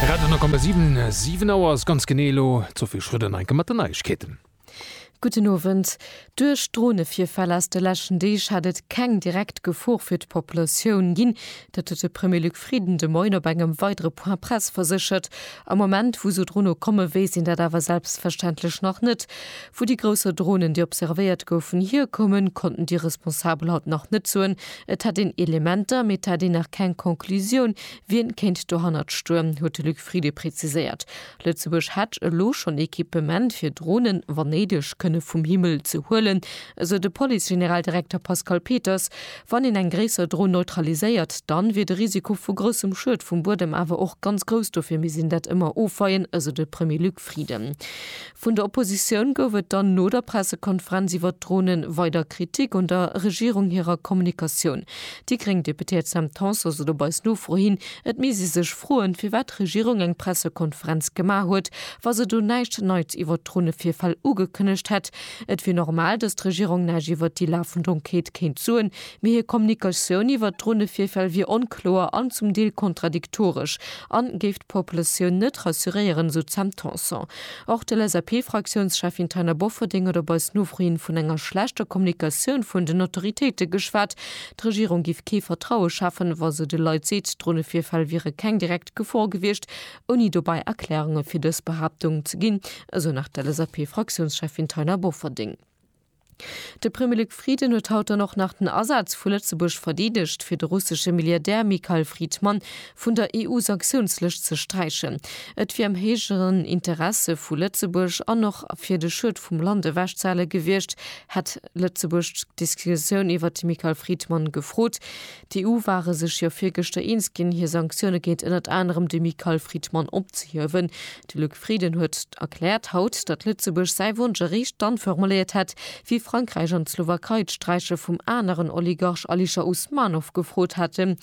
Radio 10,7, 7 Auer ass ganz genee elo. D'Sophie Schröder no enke mat den Neiegkeeten. Gudden Owend. Duerch Dronevirfäll aus de leschten Deeg hätt et keng direkt Gefor fir d'Populatioun ginn. Dat huet de Premier Luc Frieden de Moien op engem weidere Point Presse verséchert. Am Moment, wou sou Drono komme weess een dat awer selbstverständlech nach net. Wou déi grousser Dronen, déi observéiert goufen, hierkommen, konnten déi Responsabel haut nach net soen. Et hätt een Elementer, mee et hätt een nach keng Conclusioun, wien kéint dohannert stoen, huet de Luc Frieden preziséiert. Lëtzebuerg hätt elo schonn Equipement, fir Dronen, wann néideg, kënne vum Himmel ze huelen, esou de Police-Generaldirekter Pascal Peters. Wann een eng gréisser Dron neutraliséiert, dann wier de Risiko vu groussem Schued vum Buedem awer och ganz grouss, dofir misst een dat ëmmer ofweien, esou de Premier Luc Frieden. Vun der Oppositioun gouf et dann no der Pressekonferenz iwwert d'Dronen weider Kritik un der Regierung hirer Kommunikatioun. Déi gréng Deputéiert Sam Tanson sot op eis Nofro hin, et misst ee sech froen, firwat d'Regierung eng Pressekonferenz gemaach huet, wa se do näischt Neits iwwert d'Dronevirfäll ugekënnegt hätt. Et wier normal, datt d'Regierung näischt iwwert déi lafend Enquête kéint soen, mee hir Kommunikatioun iwwert d'Dronevirfäll wier onkloer an zum Deel kontradiktoresch a géif Populatioun net rassuréieren, esou d'Sam Tanson. Och de LSAP-Fraktiounscheffin Taina Bofferding huet op eis Nofro hin vun enger schlechter Kommunikatioun vun den Autoritéite geschwat. D'Regierung géif kee Vertraue schafen, wa se de Leit seet, Dronevirfäll wiere keng direkt Gefor gewiescht, ouni dobäi Erklärunge fir dës Behaaptung ze ginn, esou nach d'LSAP-Fraktiounscheffin Taina Bofferding. De Premier Luc Frieden huet haut dann och nach den Asaz vu Lëtzebuerg verdeedegt, fir de russesche Milliardär Mikhail Fridman vun der EU-Sanktiounslëscht ze sträichen. Et wier am héijeren Interesse vu Lëtzebuerg an och fir de Schued vum Land ewechzehale gewiescht, hätt Lëtzebuerg d'Diskretioun iwwert de Mikhail Fridman gefrot. D'EU ware sech jo virgëschter eens ginn, hir Sanktioune géint ënnert anerem de Mikael Fridman opzehiewen. De Luc Frieden huet erkläert haut, datt Lëtzebuerg säi Wonsch eréischt dann formuléiert hätt, wéi Frankräich an d'Slowakei d'Sträiche vum aneren Oligarch Alisher Usmanov gefrot hätten.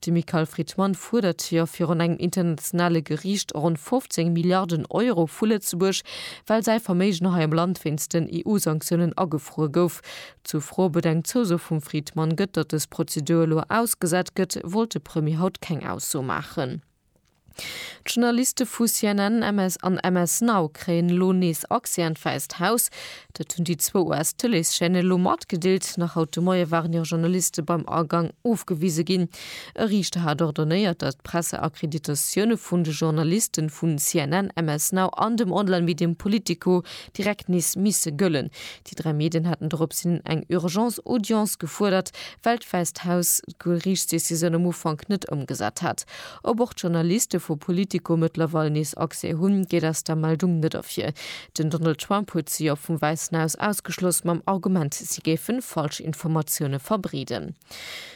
De Mikael Fridman fuerdert jo virun engem internationale Geriicht ronn 15 Milliarden Euro vu Lëtzebuerg, well säi Verméigen hei am Land wéinst den EU-Sanktiounen agefruer gouf. Zur Fro, ob et eng Zouso vum Fridman gëtt, datt dës Prozedur elo ausgesat gëtt, wollt de Premier haut keng Ausso maachen. D'Journaliste vu CNN an MS Now kréien elo nees Accès an d'Wäisst Haus. Dat hunn déi zwou US-Tëleeschaîne elo matgedeelt. Nach haut de Moie waren hir Journaliste beim Agang ofgewise ginn. E Riichter hat ordonéiert, datt d'Presseakkreditatioune vun de Journaliste vu CNN, MS Now an dem Online-Medium Politico direkt nees misse gëllen. Déi dräi Medien haten doropshin eng Urgence Audience gefuerdert, well d'Wäisst Haus d'Geriichtsdecisioun am Ufank net ëmgesat hat. Ob och d'Journaliste vu Politico mëttlerweil nees Accès hunn, geet aus der Meldung net ervir. Den Donald Trump huet se jo vum Wäissen Haus ausgeschloss, mam Argument, si géifen Falschinformatioune verbreeden.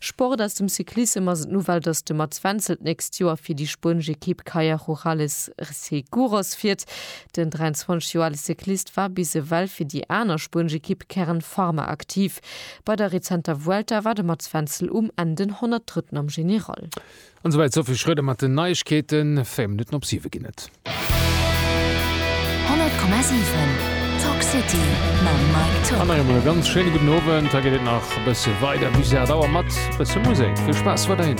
Sport aus dem Cyclissem ass et d'Nouvelle, dass de Mats Wenzel d'nächst Joer fir déi spuenesch Ekipp Kayak Rurales Seguros fiert. Den 23 Joer ale Cyclist war bis ewell fir déi aner spuenesch Ekipp Kern Pharma aktiv. Bei der rezenter Vuelta war de Mats Wenzel um Enn den 103. am General. An souwäit d'Sophie Schröder mat den Neiegkeeten. Véier Minutten op siwe ginn et. 100,7 Talk City mam Mike Tock. An nach eemol e ganz schéine gudden Owend. Hei geet et nach e bësse weider bis 8 Auer mat e bësse Musek. Vill Spaass weiderhin!